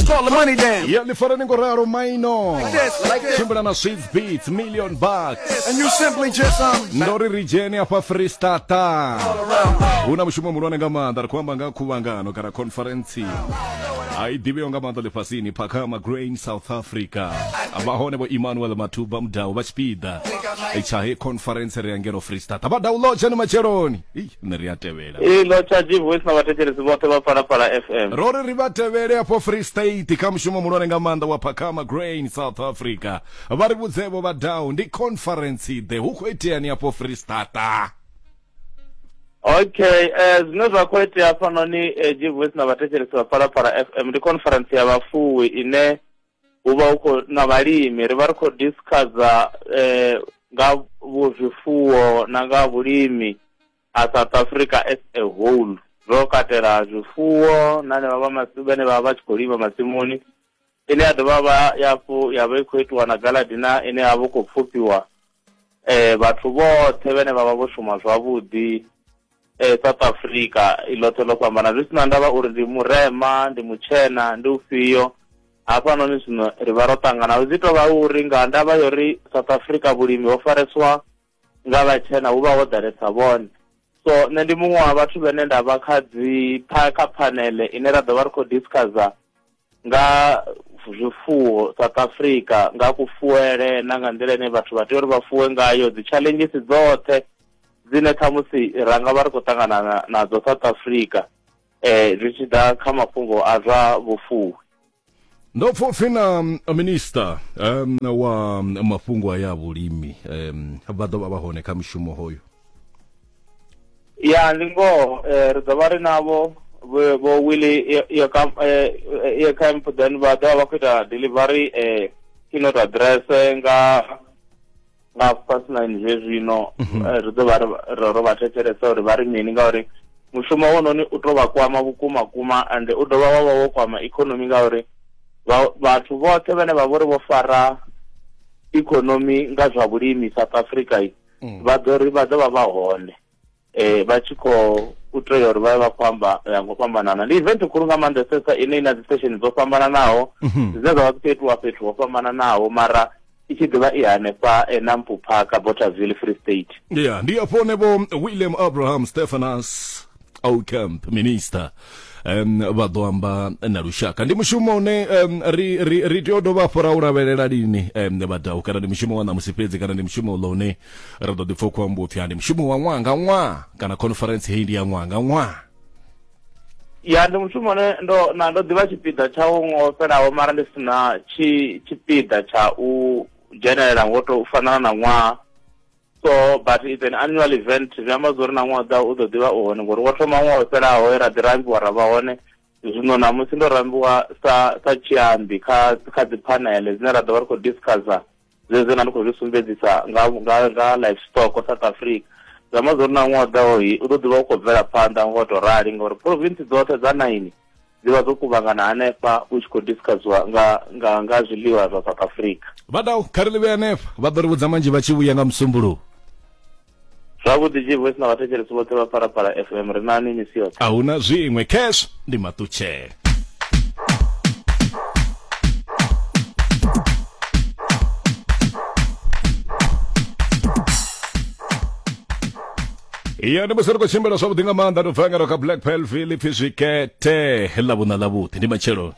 Call the money down. ya lifara ni ngo ralo maino Like this, like this. tshimbila na swift beats million bucks And you simply just um. ndo ri ri dzheni afha freestata hu na mushumo muhulwane nga maanḓa ri khou amba nga khuvhangano kana conference a i ḓivheo nga maanḓa ḽifhasini phakama grain south africa vha hone vho emmanuel matuba mudau vha tshipiḓa tsha he conference ri ya ngeno freestata vha download tshani matsheloni Ih, nṋe ri a tevhela Ee, ḽo tsha G-Voice na vhathetshelesi vhoṱhe vha Phalaphala FM. ro ri ri vha tevhele afho free state kha mushumo muhulwane nga maanḓa wa phakama grain south africa vha ri vhudzevho vha dau ndi conference ḓe hu khou iteani afho free stata Okay, eh zwine zwa khou itea hafhanoni eh, G-Voice na vhathetshelesi vha Phalaphala FM ndi conference ya vhafuwi ine hu vha hu khou na vhalimi ri vha ri khou discussa eh nga vhu zwifuwo na nga vhulimi A South Africa as a whole zwo katela zwifuwo na henevha vha masimu vhane vha vha vha tshi khou lima masimuni ine ya dovha vha yafhu ya vha i khou itiwa na galadina ine ya vha khou pfufhiwa um vhathu vhoṱhe vhane vha vha vho shuma zwavhuḓi um south africa i ḽoṱhe ḽo fhambana zwi si na ndavha uri ndi murema ndi mutshena ndi ufhio hafhanoni zwino ri vha ro ṱangana zwi tou vha uri nga ndavha ya uri south africa vhulimi ho fareswa nga vhatshena hu vha ho ḓalesa vhone so nṋe ndi muṅwe wa vhathu vhene nda vha kha dzi kha phanele ine ra ḓo vha ri khou discussa nga zwifuwo south africa nga kufuele na nga nḓila ine vhathu vha tea uri vha fuwe ngayo dzi challenges dzoṱhe dzine khamusi ra nga vha ri khou ṱangana nadzo south africa um zwi tshi ḓa kha mafhungo a zwa vhufuwi ndo pfa upfi na mm, minista um, wa mm, mafhungo aya a vhulimi um, vha ḓo vha vha hone kha mushumo hoyo ya ndi ngoho eh, ri ḓo vha ri navho vho vho willy yo- yo kam- eh, eh, yo camp then vha ḓo vha vha khou ita delivery eh, keynote address nga nga fast nine zwe zwino mhm. eh, ri ḓo vha ro vha thetshelesa uri vha ri mini ngauri mushumo wononi u tou vha kwama vhukuma kuma ande u dovha wa vha wo kwama ikonomi ngauri vhathu vhoṱhe vhane vha vhori vho fara ikonomi nga zwa vhulimi south africa mm. vha ḓo ri vha ḓo vha vha hone eh vha tshi khou u tea uri vha vha khou amba ya ngo fhambanana ndi event khulu nga maanḓesesa ine ina dzi station dzo fhambananaho mhm. dzine dza vha dzi khou itiwa fhethu ho fhambananaho mara i tshi ḓivha i hanefha enampu parka botterville free state ya ndi afho ne vho william abraham stephanas ocamp minister um vha ḓo amba na lushaka ndi mushumo une um, ri, ri, ri tea u dovha afho ra u lavhelela lini um, vhadau kana ndi mushumo wa ṋamusi fhedzi kana ndi mushumo uḽo une ri ḓo ḓipfa u khou amba upfi ndi mushumo wa ṅwaha nga ṅwaha kana conference heyi ndi ya ṅwaha nga ṅwaha ya ndi mushumo une ndo na ndo ḓivha tshipiḓa tsha u ngo fhelaho mara ndi si na tshi tshipiḓa tsha u dzhenelela ngo to fanana na ṅwaha so but it's an annual event zwi amba zwa uri na ṅwaha ḓa u ḓo ḓivha u hone ngori wo thoma ṅwaha u fhelaho ra ḓi rambiwa ra vha hone zwino namusi ndo rambiwa sa sa tshiambi kha kha dzi phanele dzine ra ḓo vha ri khou discussa zwezwo na ndi khou zwi sumbedzisa nga nga nga livestock south africa zwi amba zwo ri na ṅwaha ḓaho hi u ḓo ḓivha u khou bvela phanḓa ngo to rali ngauri province dzoṱhe dza naini dzi vha dzo kuvhangana hanefha u tshi khou discussiwa nga nga nga zwiḽiwa zwa south africa vha dau kha ri ḽi vhe hanefha vha ḓo ri vhudza manzhi vha tshi vhuya nga musumbuluwo zwavhuḓi jivoice na vhathetshelesi vhoṱhe vha phalaphala fm ri nani misi yoṱhe a hu na zwiṅwe cash ndi maṱutshele ya ndi musi ri khou tshimbila zwavhuḓi nga maanḓa ndo bva ngaro kha black pelville pfi zwikete ḽa vhuṋa ḽa vhuḓi ndi matshelo